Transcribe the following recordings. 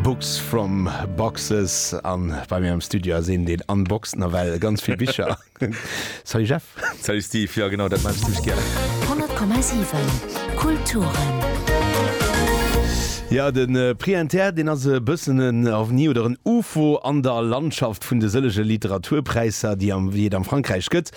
Books from boxes an bei mir am Studio ass een deen unboxt nawell ganz vill Bicher. Salut Jeff. Salut Steve, jo genau dat maachen ech zimmlech gären. 100,7 Kulturen. Jo, de Prix Inter, deen ass e bëssen en Ovni oder en Ufo an der Landschaft vun de sëllege Literaturpräisser, déi et am Frankräich gëtt.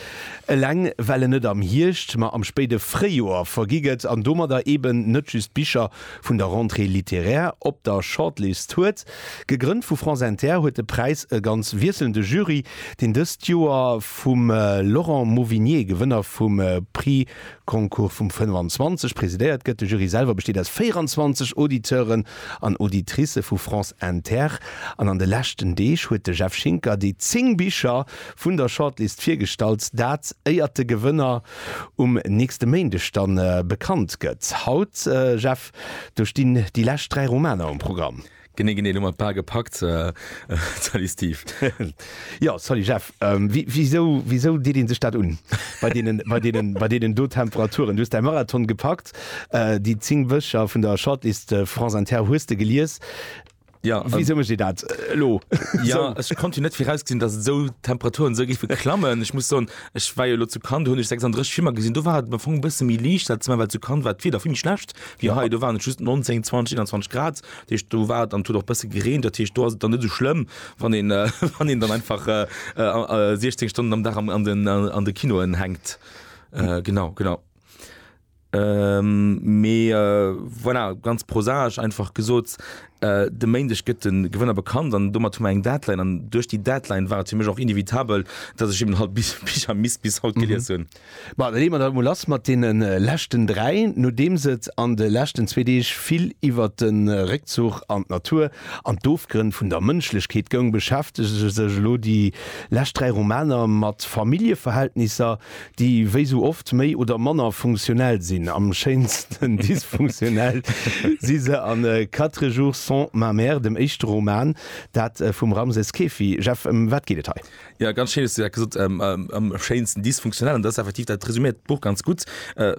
Eleng well en net am Hierscht, ma am spéide Fréijoer vergi gëtt an domadder eeben net just Bicher, vun der Rentrée littéraire op der Shortlist huet. Gegrënnt vu France Inter huet de Präis e ganz wiesselnde Jury, deen dëst Joer vum Laurent Mauvigné, Gewënner vum Prix Goncourt vum 25, presidéiert gëtt. De Jury selwer besteet aus 24 Auditeuren an Auditricë vu France Inter. An an de leschten Deeg huet de Jeff Schinker déi 10 Bicher vun der Shortlist virgestallt, dat éiert de Gewënner, um nächste Méindeg dann bekannt gëtt. Haut, Jeff, do stinn déi lescht 3 Romaner um Programm. Genee, genee, elo mat Bal gepackt. Salut Steve. Jo, salut Jeff. Wisou, wisou deet ee sech dat un bei deenen, bei deenen, bei deenen do Temperaturen? Du hues däi Marathon gepackt, déi 10 Wëcher vun der Shortlist France Inter hues de gelies. Ja, Wéi sou mécht Dir dat elo? Ja, ech konnt jo net virausgesinn, datt esou Temperaturen esou géife klammen. Ech muss soen, ech war jo elo zu Cannes, do hunn ech 36 Filmer gesinn, do war et am Fong e bësse méi liicht, dat ass normal, well zu Cannes war d'Wieder vill méi schlecht wéi hei. Do waren et just 19, 20, 21 Grad, dat heescht do war et an et huet och e bësse gereent, dat heescht do ass et dann net esou schlëmm, wann een, wann een dann einfach 16 Stonnen am Dag an de Kinoen hänkt. Genau, genau. Ähm, mee äh, voilà, ganz prosaisch einfach gesot, äh, de Méindeg gëtt de Gewënner bekannt an domat hu mer eng Deadline an duerch déi Deadline war et fir mech och inevitabel, datt ech eben halt bis Bicher misst bis haut gelies hunn. Bon, da leeë mer dat emol lass mat deene leschten dräi. Nodeems et an de leschten zwee Deeg vill iwwert de Réckzuch an d'Natur an d'Ofgrënn vun der Mënschlechkeet goung, beschäftege sech elo déi lescht dräi Romaner mat Familljeverhältnisser, déi wéi sou oft méi oder manner funktionell sinn, am schéinsten dysfunktionell si se a Quatre jours sans ma mère, dem éischte Roman, dat vum Ramses Kefi. Jeff, ëm wat geet et hei? Jo, ganz schéin hues de dat gesot, am schéinsten dysfunktionell, an dat ass effektiv, dat resuméiert d'Buch ganz gutt,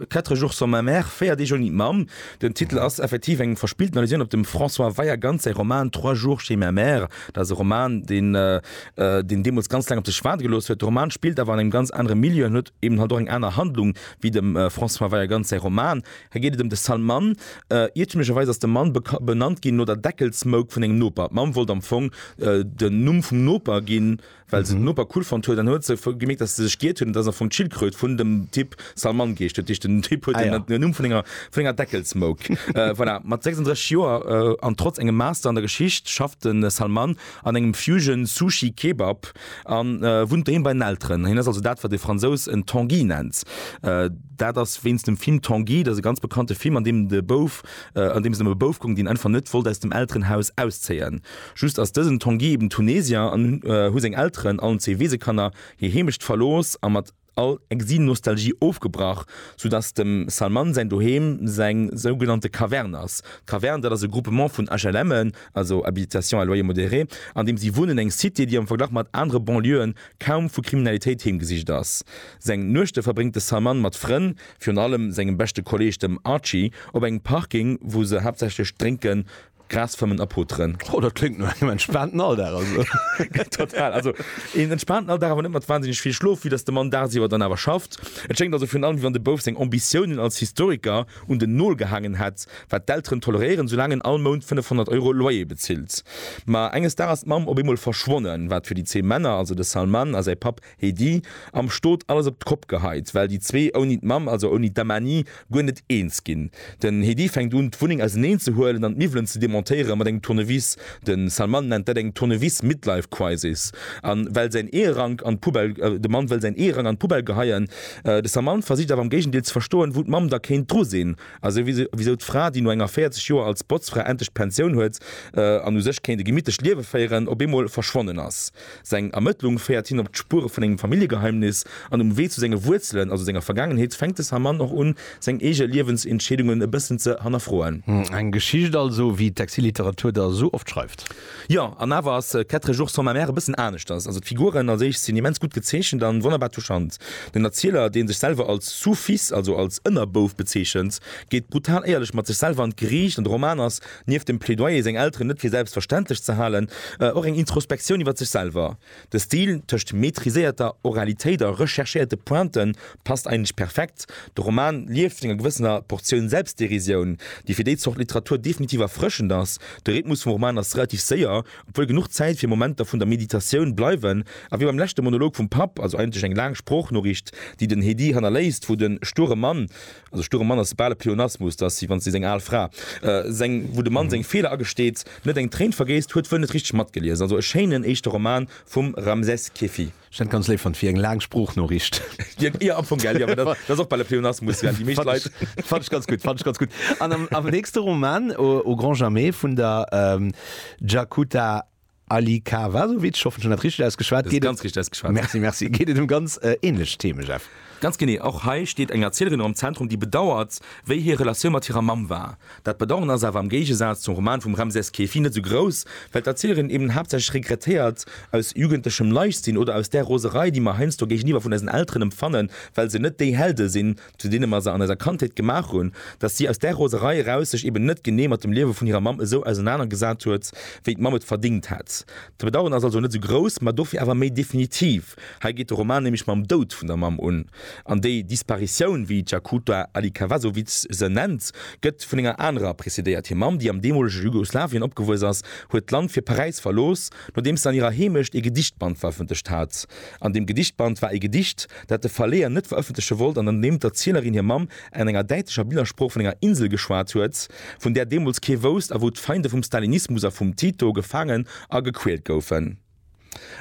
Quatre jours sans ma mère, Véier Deeg ouni d'Mamm. Den Titel ass effektiv eng verspillten Allusioun op dem François Weiergantz säi Roman Trois jours chez ma mère. Dat ass e Roman, deen deen deemools ganz laang op sech waarde gelooss huet. De Roman spillt awer an engem ganz anere Milieu an huet eben halt och eng aner Handlung wéi dem François Veiagands säi Roman. Hei geet et ëm de Salman. Iertümlecherweis ass de Mann benannt ginn no der Deckelsmouk vun engem Noper. D'Mamm wollt am Fong den Numm vum Noper ginn, well se den Noper cool fonnt huet. An huet se gemeekt, dass se sech giiert huet an et ass am Fong d'Schildkröt vun dem Typ Salman geescht. Dat heescht den Typ huet den Numm vun enger Deckelsmouk. Voilà, mat 36 Joer an trotz engem Master an der Geschicht schafft de Salman an engem Fusion Sushi Kebab a wunnt doheem bei den Elteren. Hien ass also dat wat de Fransous en Tanguy nennt. Dat ass wéinst dem Film Tanguy, dat ass e ganz bekannte Film an deem de Bouf, an deem et ëm e Bouf goung deen einfach net wollt aus dem Elterenhaus auszéien. Just ass dësen Tanguy eben Tunesier an hu seng Elteren, allen zwee Weesekanner, hir Heemecht verlooss a mat. All Exil-Nostalgie ofgebrach, sou dass dem Salman säin Doheem seng sougenannte Caverne ass. D'Caverne, dat ass e Groupement vun HLM'en, also Habitation à loyer modéré, an deem si wunnen, eng Cité, déi am Verglach mat anere Banlieuen kaum vu Kriminalitéit heemgesicht ass. Seng Nuechte verbréngt de Salman mat Frënn, virun allem sengem beschte Kolleeg, dem Archie, op engem Parking, wou se haaptsächlech drénken. Gras fëmmen a poteren. Oh, dat kléngt no engem entspaanten Alldag, also. Total, also een entspaanten Alldag, awer net mat wansinneg vill Schlof, vue dass de Mann dagsiwwer dann awer schafft. Et schéngt also virun allem, wéi wann de Bouf seng Ambitiounen als Historiker un den Nol gehaangen hätt, wat d'Elteren toleréieren, soulaang en all Mount 500 Euro Loyer bezilt. Ma enges Dags ass d'Mamm op eemol verschwonnen, wat fir déi zwee Männer, also de Salman a säi Papp, Hee di am Stot alles op d'Kopp geheit, well di zwee ouni d'Mamm, also ouni d'Amani, guer net eens ginn. Den Hee di fänkt un d'Wunneng auseneen ze huelen an d'Miwwelen ze demontéieren mat engem Tournevis. Den Salman nennt dat eng Tournevis Midlife Crisis an well säin Eherank an d'Poubelle, de Mann wëll säin Eherank an d'Poubelle geheien. De Salman versicht awer am Géigendeel ze verstoen wou d'Mamm da kéint dru sinn a souwisou d'Fra di no enger 40 Joer als Botzfra endlech d'Pensioun huet an u sech kéint e gemittlecht Liewe féieren, op eemol verschwonnen ass. Seng Ermëttlung féiert hien op d'Spuere vun engem Familljegeheimnis, an um Wee zu senge Wuerzelen, also senger Vergaangenheet, fänkt de Saman och un, seng eege Liewensentscheedungen e bëssen ze hannerfroen. Eng Geschicht also, wéi d'Exilliteratur der esou oft schreift. Jo, an awer ass Quatre jours sans ma mère e bëssen aneschters. Also d'Figuren als éischt sinn immens gutt gezeechent an wonnerbar touchant. Den Erzieler, deen sech selwer als sous-fils, also als Ënnerbouf bezeechent, geet brutal éierlech mat sech selwer an d'Geriicht, an de Roman ass Nieft dem Plädoyer, seng Elteren net fir selbstverständlech ze halen, och eng Introspektioun iwwer sech selwer. De Stil, tëscht maîtriséierter Oralitéit a recherchéierte Pointen, passt eigentlech perfekt. De Roman lieft vun enger gewëssener Portioun Selbstderisioun, déi fir déi Zort Literatur definitiv erfrëschend ass. De Rhythmus vum Roman ass relativ séier, obwuel genuch Zäit fir Momenter vun der Meditatioun bleiwen, a wéi beim leschte Monolog vum Papp, also eigentlech eng laang Sproochnoriicht, déi den Hedy hannerléisst, wou de sture Mann, Also Sturm Mann ass bal e Pleonasmus, dass si, wann si seng al Fra, seng, wou de Mann seng Feeler agesteet, net eng Tréin vergéisst, huet wuel net richteg matgelies. Also e schéinen éischte Roman vum Ramses Kefi. Ech hätt ganz léif fonnt, fir eng laang Sprooch-Noriicht. Jo, am Fong, gell, jo, dat ass och bal e Pleonasmus, well déi meescht Leit. Fannt ech ganz gutt, fannt ech ganz gutt. An am nächste Roman, Au grand jamais, vun der Jacuta. Ali Kawasovic, ich hoffen ech hunn dat richteg ausgeschwat, geet ganz richteg ausgeschwat, merci, merci, geet et ëm ganz änlech Theme, Jeff. Ganz genee, och hei steet eng Erzielerin am Zentrum, déi bedauert, wéi hir Relatioun mat hirer Mamm war. Dat Bedauern ass awer am Géigesaz zum Roman vum Ramses Keefi net esou grouss, well d'Erzielerin eben haaptsächlech regrettéiert, aus jugendlechem Leichtsinn oder aus där Roserei, déi mer heiansdo géigeniwwer vun eisen Elteren empfannen, well se net déi Helde sinn, zu deene mer se an eiser Kandheet gemaach hunn, datt si aus där Roserei eraus sech eben net genee mat dem Liewe vun hirer Mamm esou ausenanergesat huet, wéi d'Mamm et verdingt hätt. D'Bedaueren ass also net esou grouss, ma dofir awer méi definitiv. Hei geet de Roman nämlech mam Doud vun der Mamm un, an déi Disparitioun, wéi d'Jakuta Alikavazovic se nennt, gëtt vun enger anerer prezedéiert. Hir Mamm, déi am deemolege Jugoslawien opgewuess ass, huet d'Land fir Paräis verlooss, nodeems se an hirer Heemecht ee Gedichtband verëffentlecht hat. An deem Gedichtband war ee Gedicht, dat de Verleeër net verëffentleche wollt an an deem d'Erzielerin hir Mamm an enger däitlecher Billersprooch vun enger Insel geschwat huet, vun där deemools kee wousst a wou d'Feinde vum Stalinismus a vum Tito gefaangen a gequält goufen.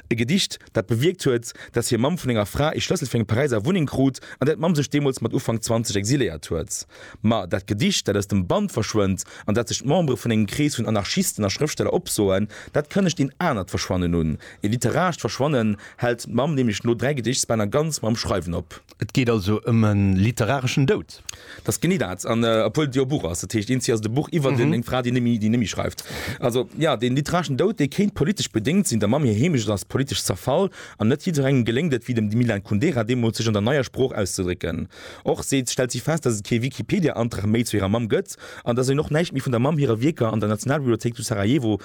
E Gedicht, dat bewierkt huet, datt hir Mamm vun enger Fra ee Schlëssel fir eng Paräiser Wunneng krut, an där d'Mamm sech deemools mat Ufank 20 exiléiert huet. Ma dat Gedicht, dat aus dem Band verschwënnt an dat sech d'Membere vun engem Krees vun Anarchisten a Schrëftsteller opsoen, dat kënnegt een anert Verschwannen un, E literarescht Verschwannen hält d'Mamm nämlech no dräi Gedichtbänner ganz mam Schreiwen op. Et geet also ëm e literareschen Doud? Dat ass genee dat. An obwuel et jo e Buch ass, dat heescht, Inzi ass et e Buch iwwer eng Fra, déi némmi schreift. Also jo, dee literareschen Doud, dee kéint politesch bedéngt sinn. Der Mamm hir Heemecht ass politesch zerfall an net jidderengem geléngt et, wéi dem Milan Kundera deemools, sech an der neier Sprooch auszedrécken. Och seet, stellt si fest, datt et kee Wikipedia-Antrag méi zu hirer Mamm gëtt an datt een och näischt méi vun der Mamm hire Wierker an der Nationalbibliothéik zu Sarajevo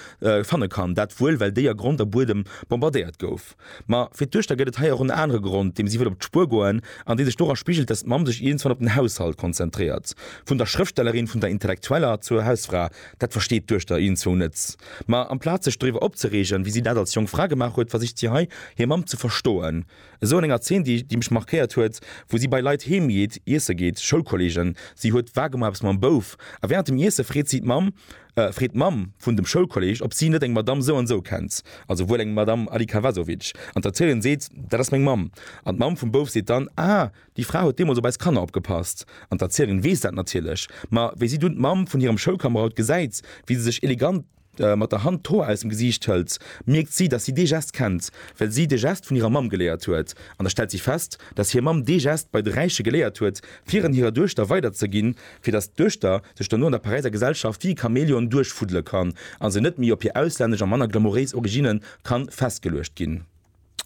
Fanne kann. Dat wuel, well déi a Grond a Buedem bombardéiert gouf. Ma fir d'Duechter gëtt et hei och en anere Grond, deem si wëll op d'Spuer goen an dee sech dora spigelt, dass d'Mamm sech iergendswann op den Haushalt konzentréiert. Vun der Schrëftstellerin, vun der Intellektueller zur Hausfra, dat versteet d'Duechter iergendzwou net. Ma amplaz sech doriwwer opzereegen, wéi si dat als jonk Fra gemaach huet, versicht si hei, hir Mamm ze verstoen. Esou an enger Zeen, déi mech markéiert huet, wou si bei Leit heem geet, iesse geet, Schoulkolleegen, si huet wagemol eppes mam Bouf a wärend dem Iesse freet si d'Mamm, Äh, freet d'Mamm vun dem Schoulkolleg, ob si net eng Madamm sou an sou kennt, also wuel eng Madamm Alikavazovic. An d'Erzéierin seet, Dat ass meng Mamm. An d'Mamm vum Bouf seet dann, Ah, déi Fra huet deemools op eis Kanner opgepasst. An d'Erzéierin weess dat natierlech. Ma wéi si dunn d'Mamm vun hirem Schoulkamerad gesäit, wéi se sech elegant mat der Hand d'Hoer aus dem Gesiicht hëlt, mierkt si, dass si dee Gest kennt, well si de Gest vun hirer Mamm geléiert huet. An da stellt si fest, dass hir Mamm dee Gest bei de Räiche geléiert huet, fir en hirer Duechter weiderzeginn, fir datt d'Duechter sech dono an der Paräiser Gesellschaft wéi e Chamäleon duerchfuddele kann a se net méi op hir auslännesch a manner glamouréis Originne kann festgeluecht ginn.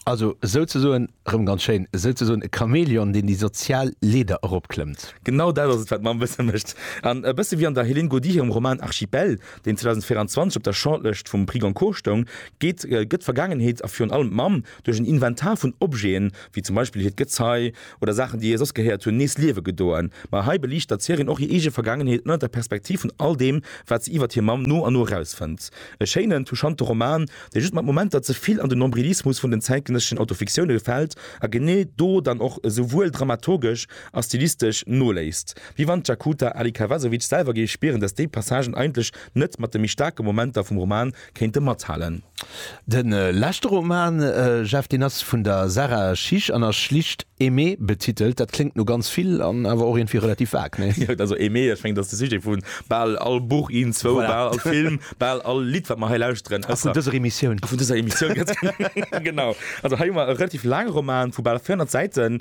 Also souzesoen, rëm ganz schéin, souzesoen e Chamäleon, deen déi sozial Leeder eropklëmmt. Genau dat ass et, wat mer am Bësse mécht. An e bësse wéi an der Hélène Gaudy hirem Roman Archipel, deen 2024 op der Shortlëscht vum Prix Goncourt stoung, geet d'Vergaangenheet a virun allem d'Mamm duerch en Inventar vun Objeten, wéi zum Beispill hiert Gezei oder Saachen, déi hir soss gehéiert hunn, nees Liewe gedoen. Ma hei beliichtert d'Serien och hir eege Vergaangenheet ënnert der Perspektiv vun all deem, wat se iwwert hir Mamm no an no erausfënnt. E schéinen, touchante Roman, dee just mat Momenter ze vill an den Nombrilismus vun den zäitgenësseschen Autofiktioune gefält a genee do dann och esouwuel dramaturgesch a stilistesch noléisst. Wéi wann d'Jakuta Alikavazovic selwer géif spieren, datt déi Passagen eigentlech net mat de méi staarke Momenter vum Roman kéinte mathalen. De leschte Roman, Jeff, deen ass vun der Sarah Schisch an ass schlicht Aimé betitelt. Dat kléngt no ganz vill an awer och iergendwéi relativ vag, nee? Jo, also Aimé, ech mengen, dat ass de Sujet vu bal all Buch, een, zwou, bal all Film, bal all Lidd, wat mer hei lauschteren. A vun dëser Emissioun. A vun dëser Emissioun, ganz genau. Also hei hu mer e relativ laange Roman vu bal 400 Säiten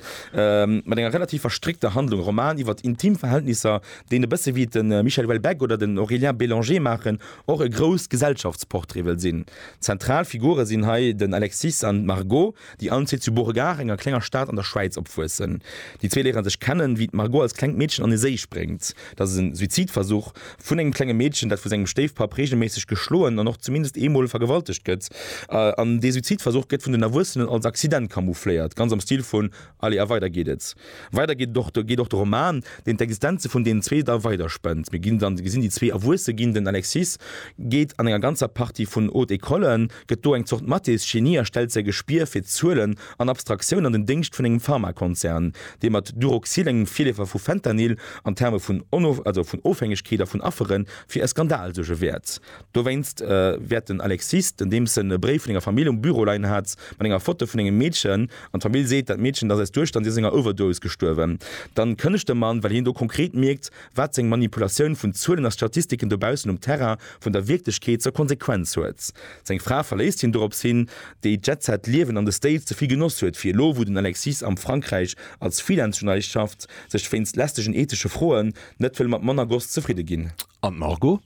mat enger relativ verstréckter Handlung. E Roman iwwer intim Verhältnisser, deen e bësse wéi de Michel Houellebecq oder den Aurélien Bélanger maachen, och e grousst Gesellschaftsportrait wëll sinn. Zentral Figure sinn hei den Alexis an d'Margot, déi allen zwee zu Beauregard, enger klenger Stad an der Schwäiz, opwuessen. Déi zwee léiere sech kennen, wéi d'Margot als klengt Meedchen an e Séi spréngt. Dat ass e Suizidversuch vun engem klenge Meedchen, dat vu sengem Stéifpapp reegelméisseg geschloen an och zumindest eemol vergewaltegt gëtt. An dee Suizidversuch gëtt vun den Erwuessenen als Accident camoufléiert, ganz am Stil vu. Allez, a weider geet et. Weider geet et och de Roman, deen d'Existenze vun deenen zwee da weider spënnt. Mir ginn dann, gesinn déi zwee erwuesse ginn. Den Alexis geet an enger ganzer Partie vun Haute Ecollen, gëtt do eng Zort Mathes-Genie a stellt säi Gespier fir Zuelen an Abstraktioun an den Déngscht vun engem Pharmakonzern, dee mat Duroxil, engem Virleefer vu Fentanyl, an Terme vun Ofhängegkeet a vun Affere fir e Skandal suerge wäert. Dowéinst wäert den Alexis, den deems en e Bréif vun enger Famill um Büro leien hat, mat enger Foto vun engem Meedchen, an d'Famill seet, dat Meedchen ass aus Duerscht an si ass enger Overdose gestuerwen, dann kënnegt de Mann, well hien do konkret mierkt, wat seng Manipulatioun vun Zuelen a Statistiken dobaussen um Terrain vun der Wierklechkeet zur Konsequenz huet. Seng Fra verléisst hien dorops hin, déi d'Jetset-Liewen an de States ze vill genoss huet, fir elo, wou den Alexis am Frankräich als Freelance-Journalist schafft, sech wéinst lästegen ethesche Froen net wëll mat manner Goss zefridde ginn. An d'Margot?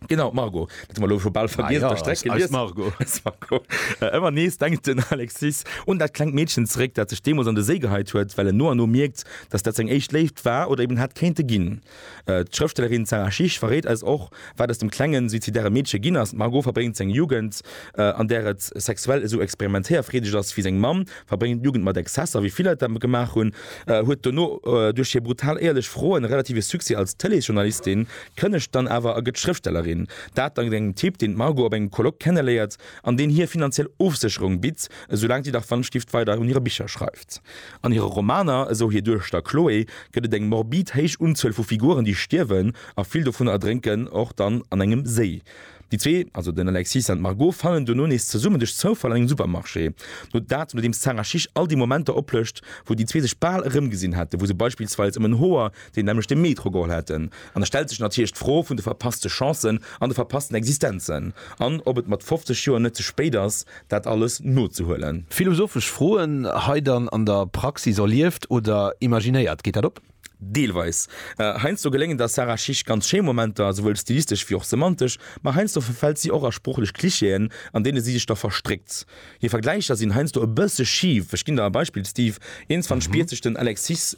Genau Margo ëmmer nees denkt den Alexis un dat klengt Meedchen zeréck, dat sech deemools an de Séi geheit huet, well en no an no mierkt, datt dat seng éischt Léift war oder eben hätt kéinte ginn. D'Schrëftstellerin Sara Schich verréit eis och, wat aus dem klengen, suizidäre Meedche ginn ass. D'Margo verbréngt seng Jugend, an där et sexuell esou experimentéierfreedeg ass wéi seng Mamm, verbréngt d'Jugend mat Exzesser, wéi vill Leit dat gemaach hunn, huet dono duerch hir brutal éierlech Froen e relative Succès als Tëleesjournalistin, Kënnegt dann awer a gëtt Schrëftstellerin. Dat dank engem Typ, deen d'Margot op engem Colloque kenneléiert an deen hir finanziell Ofsécherung bitt, esou laang si dach Wandstift weider un hire Bicher schreift. An hire Romaner, esou hir Duerschter Chloé, gëtt et eng morbid héich Unzuel vu Figuren, déi stierwen, a vill dovunner erdrénken och dann an engem Séi. Déi zwee, also den Alexis an d'Margot, fannen dono nees zesummen duerch Zoufall an engem Supermarché. No dat, nodeems d'Sarah Chiche all déi Momenter oplëscht, wou déi zwee sech bal erëmgesinn hätten, wou se beispillsweis ëm en Hoer, déi nämlech de Metro geholl hätten, an da stellt sech natierlech d'Fro vun de verpasste Chancen an de verpassten Existenzen, an ob et mat 50 Joer net ze spéit ass, dat alles nozehuelen. Philosophesch Froen hei dann an der Praxis erlieft oder imaginéiert, geet dat op? Deelweis. Heiansdo geléngen der Sarah Schick ganz schéi Momenter, souwuel stilistesch wéi och semantesch, ma heiansdo verfält si och a sproochlech Klischeeën, an deene si sech da verstréckt. Hir Vergläicher sinn heiansdo e bësse schif. Ech ginn der e Beispill, Steve, Eens wann d'Spier sech den Alexis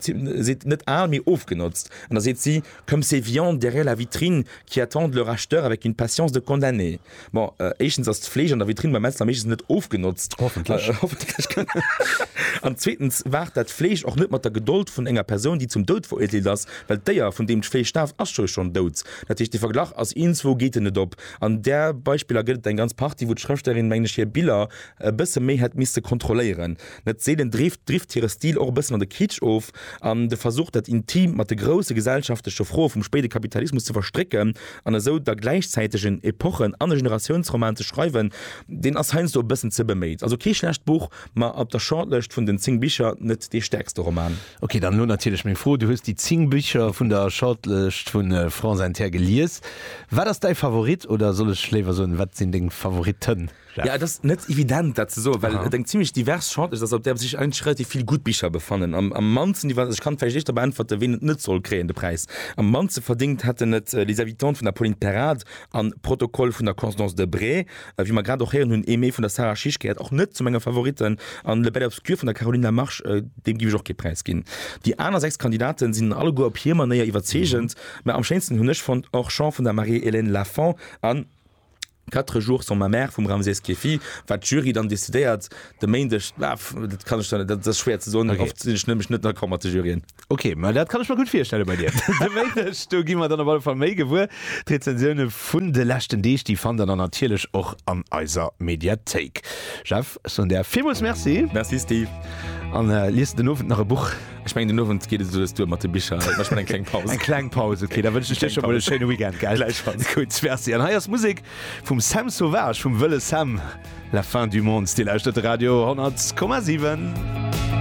zitt, net al, mee ofgenotzt, an da seet si, comme ces viandes derrière la vitrine qui attendent leur acheteur avec une patience de condamné. Bon, éischtens ass d'Fleesch an der Vitrinn beim Metzler meeschtens net ofgenotzt, hoffentlech, an zweetens waart dat Fleesch och net mat der Gedold vun enger Persoun, déi zum Doud veruerteelt ass, well d'Déier, vun deem d'Fleesch staaft, ass jo schonn dout. Dat heescht, de Verglach ass, ieenzwou geet en net op. An där Beispiller gëtt et eng ganz Partie, wou d'Schrëfstellerin, mengen ech, hir Biller e bësse méi hätt misste kontrolléieren. Net seelen drift hire Stil och e bëssen an de Kitsch of, an de Versuch, dat Intimt mat de grousse gesellschaftleche Froe vum spéide Kapitalismus ze verstrécken an esou da gläichzäiteg en Epochen an e Generatiounsroman ze schreiwen, deen ass heiansdo e bëssen ze beméit. Also kee schlecht Buch, ma op der Shortlëscht vun den 10 Bicher net dee stäerkste Roman. Ok, dann elo natierlech meng Fro, Du hues déi 10 Bicher vun der Shortlëscht vu France Inter gelies. Wat ass däi Favorit, oder soll ech léiwer soen, wat sinn deng Favoritten, Jeff? Ja, et ass net evident, dat ze soen, well et eng zimmlech divers Shortlëscht ass, op där sech eigentlech relativ vill gutt Bicher befannen. Am mannsten divers, also ech kann vläicht éischter beäntwerte ween et net soll kréien, de Präis. Am mannste verdéngt hätten et Les Habitantes vun der Pauline Perrade an Protocole vun der Constance Debré. a wéi mer grad och héieren hunn, Aimée vun der Sarah Schisch gehéiert och net zu menge Favoritten, an Le Bel Obscur vun der Caroline Lamarche, deem giff ech och kee Präis ginn. Déi aner 6 Kandidaten sinn alleguer op hir Manéier iwwerzeegend, mä am schéinsten hunn ech fonnt Orchamps vun der Marie-Hélène Lafont an Quatre jours sans ma mère vum Ramses Keffi. Wat d'Jury dann decidéiert de Méindeg, dat kann ech dann, dat ass schwéier ze soen, oft sinn ech nämlech net d'accord mat de Juryen. Ok, ma dat kann ech mer gutt virstelle bei dir. De Méindeg, do gi mer dann op alle Fall méi gewuer. D'Rezensioune vun de leschten Deeg, déi fannt der dann natierlech och an eiser Mediathéik. Jeff, ech soen der villmools Merci. Merci Steve. An lies de den Owend nach e Buch? Ech mengen den Owend geet et esou dës duer mat de Bicher. Et mécht mer eng kleng Paus. Eng kleng Paus, ok. Da wënschen ech dir scho mol e schéine Weekend, gell? Gläichfalls. Gutt, merci. An hei ass Musek vum Sam Sauvage, vum wëlle Sam. La fin du monde. Dir lauschtert de Radio 100,7.